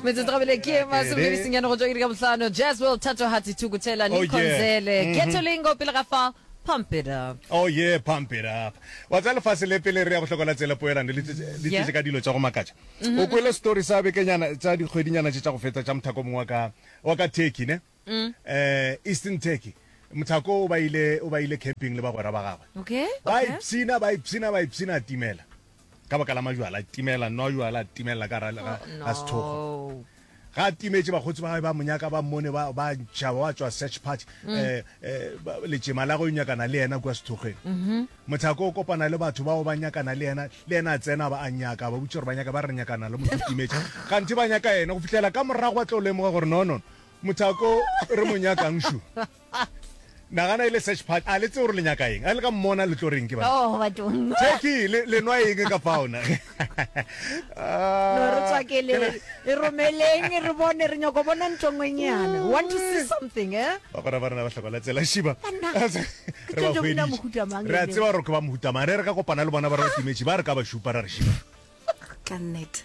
metsotso gabele ke e masome le mesenyane go tswa iri ka bohlano jaswell thatohati thukuthela Oh, yeah. likhonzele Mhm. getolingo pele ga fa pump it up oh ye pump it up wa tsa lefase le pele re ya go hlokola tsela poelano le tse- le Yeah. tšetše ka dilo tša go makatša Mhm. o kwele story sa bekenyana tša dikgwedinyana tše tša go feta tša mothako mongwe wa ka- wa ka turkey ne eh, Eastern Turkey. Mothako o ba ile o ba ile camping le bagwera ba gagwe. Okay, Ba okay. ipshina, ba ipshina, ba ipshina a timela. Ka baka la majwala a timela, nwa jwala a timela ka ra ga Oh, ga sethogo. no. Ga a timetše bakgotsi ba gagwe ba monyaka ba mmone ba ba ntšhaba ba tswa search party. Eh, eh, ba- letšema la go nyakana le yena kwa sethogeng. Mothako o kopana le batho bao ba nyakana le yena, le yena a tsena ba a nyaka, ba botša gore ba nyaka ba re nyakana le motho o timetše. Kganthe ba nyaka yena go fihlela ka morago ba tlo lemoga gore no no. Mothako re mo nyakang shu. Nagana e le search party. A le tse gore le nyaka eng? A le ka mmona le tlo reng ke bana? Oh, ba tong. Jackie, le le nwa eng ka faona? No re tswa ke le e romeleng re bone re nyoko bona ntongwenyana. Want to see something, eh? Ba gora ba rena ba hlokola tsela shiba. Re ba hweditse. Re a tseba gore ke ba mohutamang. Re re ka kopana le bona ba re ba timetše ba re ka ba shupa ra re shiba. Ka nnete.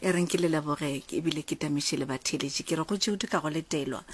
e reng ke le leboge ebile ke tamiše le batheeletši ke re go tšeudu ka go letelwa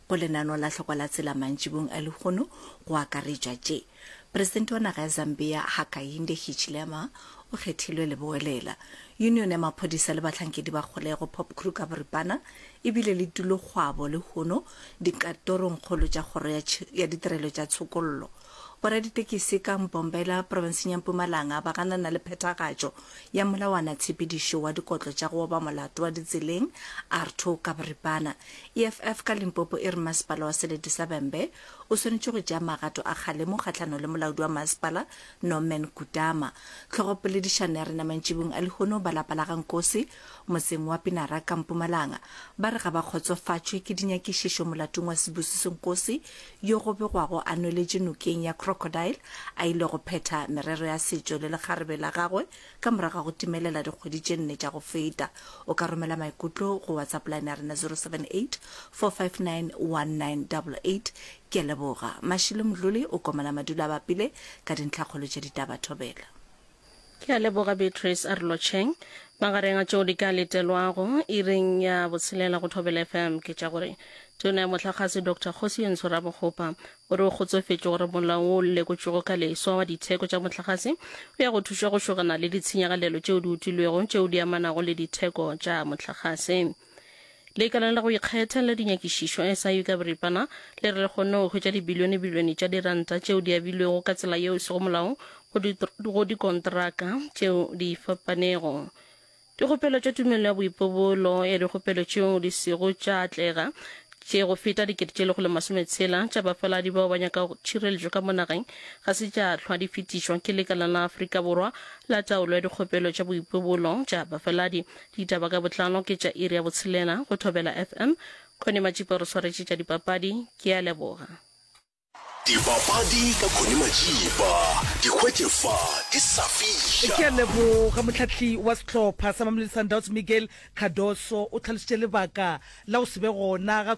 go lenano la hloko la tsela mantšibong a lehono go akaretšwa tše presidente wa naga ya zambia hakainde hichilema o kgethilwe leboelela union ya maphodisa le bahlankedi ba kgolego pop kruger boripana ebile le tulokgwabo lehono dikatorongkgolo tša kgoro ya ditirelo tša tshokollo Boraditekisi ka Mbombela, profenseng ya Mpumalanga ba ganana le phethagatšo ya molawana tshepedišo wa dikotlo tša go oba molato wa ditseleng, ARTO ka boripana. EFF ka Limpopo e re masepala wa Selete sa Bembe o swanetše go tšea magato a kgalemo kgahlanong le molaodi wa masepala Norman Kutama. Tlhogopoledišano ya rena mantšibung a lehono ba lapa la ga Nkosi Motseng wa Pinara ka Mpumalanga ba re ga ba kgotsofatšwe ke dinyakišišo molatong wa Sibusiso Nkosi yo go begwago a nweletše nokeng ya Crocodile a ile go phetha merero ya setšo le lekgarebe la gagwe ka morago ga go timelela dikgwedi tše nne tša go feta. O ka romela maikutlo go WhatsApp line ya rena 0784591988. Ke a leboga. Mashilo Mdluli o komana madula a bapile ka dintlhakgolo tša ditaba. Thobela. Ke a leboga Beatrice Arlocheng. Magareng a tšeo di ka letelwago iring ya botshelela go Thobela FM ke tša gore Tona ya Mohlagase Doctor Kgosi Yentsho Rabogopa o re o kgotsofetše gore molao wo o lekotšwego ka leswa wa ditheko tša mohlagase o ya go thuša go šogana le ditshenyagalelo tšeo di utilwego tšeo di amanago le ditheko tša mohlagase. Lekaleng la go ikgetha la dinyakišišo, SIU ka boripana, le re le kgonne go hwetša dibilionebilione tša diranta tšeo di abilwego ka tsela yeo e sego molaong go di, go dikontraka tšeo di fapanego. Dikgopelo tša tumelo ya boipobolo ya dikgopelo tšeo di sego tša atlega tše go feta dikete tše lekgolo masome tshela tša bafaladi bao ba nyakago tšhireletšo ka mo nageng ga se tša hlwa di fetišwa ke Lekala la Afrika Borwa la Taolo ya Dikgopelo tša Boipobolo tša Bafaladi, Ditaba ka botlalo ke tša iri ya botshelela go Thobela FM. Connie Matšipe o re swaretše tša dipapadi. Ke a leboga. Dipapadi ka Connie Matšipa. Di hwetše fa di sa fiša. Ke a leboga. Mohlahli wa sehlopha sa Mamelodi Sundowns Miguel Cardoso o tlhalošitše lebaka la go se be gona ga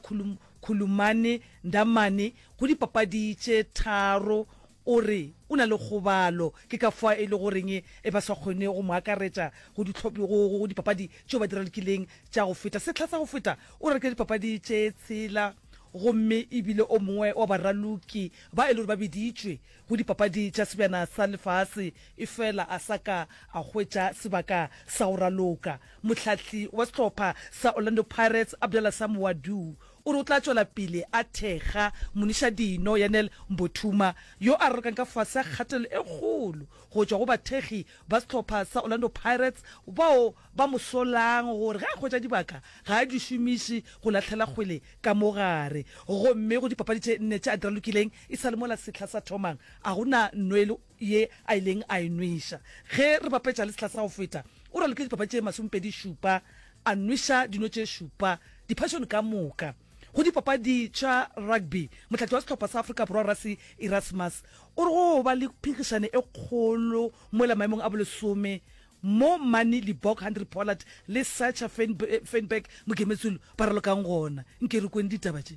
Khulumani Ndamane go dipapadi tše tharo O re o na le kgobalo, ke ka fao e lego reng e ba sa kgone go mo akaretša go ditlhophi go, go, go dipapadi tšeo ba di ralokileng tša go feta. Sehla sa go feta o ralokile dipapadi tše tshela, gomme e bile o mongwe wa baraloki ba e lego ba biditšwe go Dipapadi tša Sebjana sa Lefase, efela a sa ka a hwetša sebaka sa go raloka. Mohlahli wa sehlopha sa Orlando Pirates, Abdallah Sam Ouaddou, O re o tla tšwela pele a thekga moniša dino Yanel Mbothuma yo a rorokang ka fase ga kgatelelo e kgolo go tšwa go bathekgi ba sehlopha sa Orlando Pirates bao ba mo solang gore ge a hwetša dibaka ga a di šomiše go lahlela kgwele ka mo gare gomme go dipapadi tše nne tše a di ralokileng e sa le mola sehla sa thomang a go na nno e le ye a ileng a e nweša. Ge re bapetša le sehla sa go feta, o raloke dipapa tše masomepedi šupa, a nweša dino tše šupa, diphasione ka moka. Go dipapadi tša rugby, mohlakiwa wa sehlopha sa Afrika Borwa Rassie Erasmus o re go ba le phinkgišane e kgolo mola maemong a bolesome mo Manie Libbok, Hanri Pollard le Sacha Feinberg, Mogemetsulu, ba ralokang gona. Nke re kweng ditaba tše.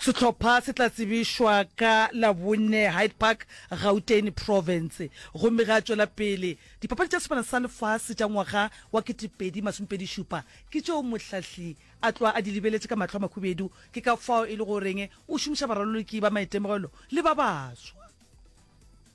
Sehlopha se tla tsebišwa ka Labone, Hyde Park, Gauteng Province, gomme ge a tšwela pele. Dipapadi tša Sefala sa Lefase tša ngwaga wa 2020 šupa ke tšeo mohlahli a tloga a di lebeletše ka mahlo a makhubedu. Ke ka fao e lego goreng o šomiša baraloloki ba maitemogelo le ba baswa.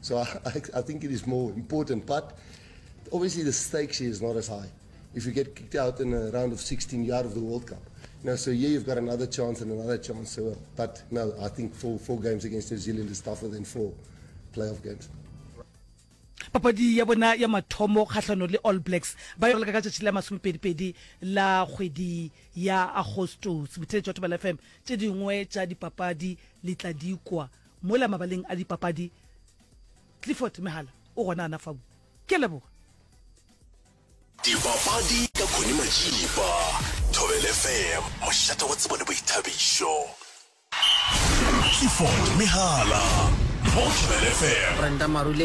So I, I, I think it is more important, but obviously the stakes here is not as high. If you get kicked out in a round of 16, you're out of the World Cup. You know, so here you've got another chance and another chance. So, uh, but no, I think four, four games against New Zealand is tougher than four playoff games. papadi ya bona ya mathomo kgahlano le all blacks ba yolaka ka tšatši la masomepedipedi la kgwedi ya agostos botheletšwa tobela fm tše dingwe tša dipapadi le tla dikwa Mola mabaleng a dipapadi, Clifford Mehala o gona ana fau. Ke a leboga. Dipapadi ka Connie Majiba, Thobela FM, mošate wa tsebo le boithabišo. Clifford Mehala mo Thobela FM. Brenda Marule.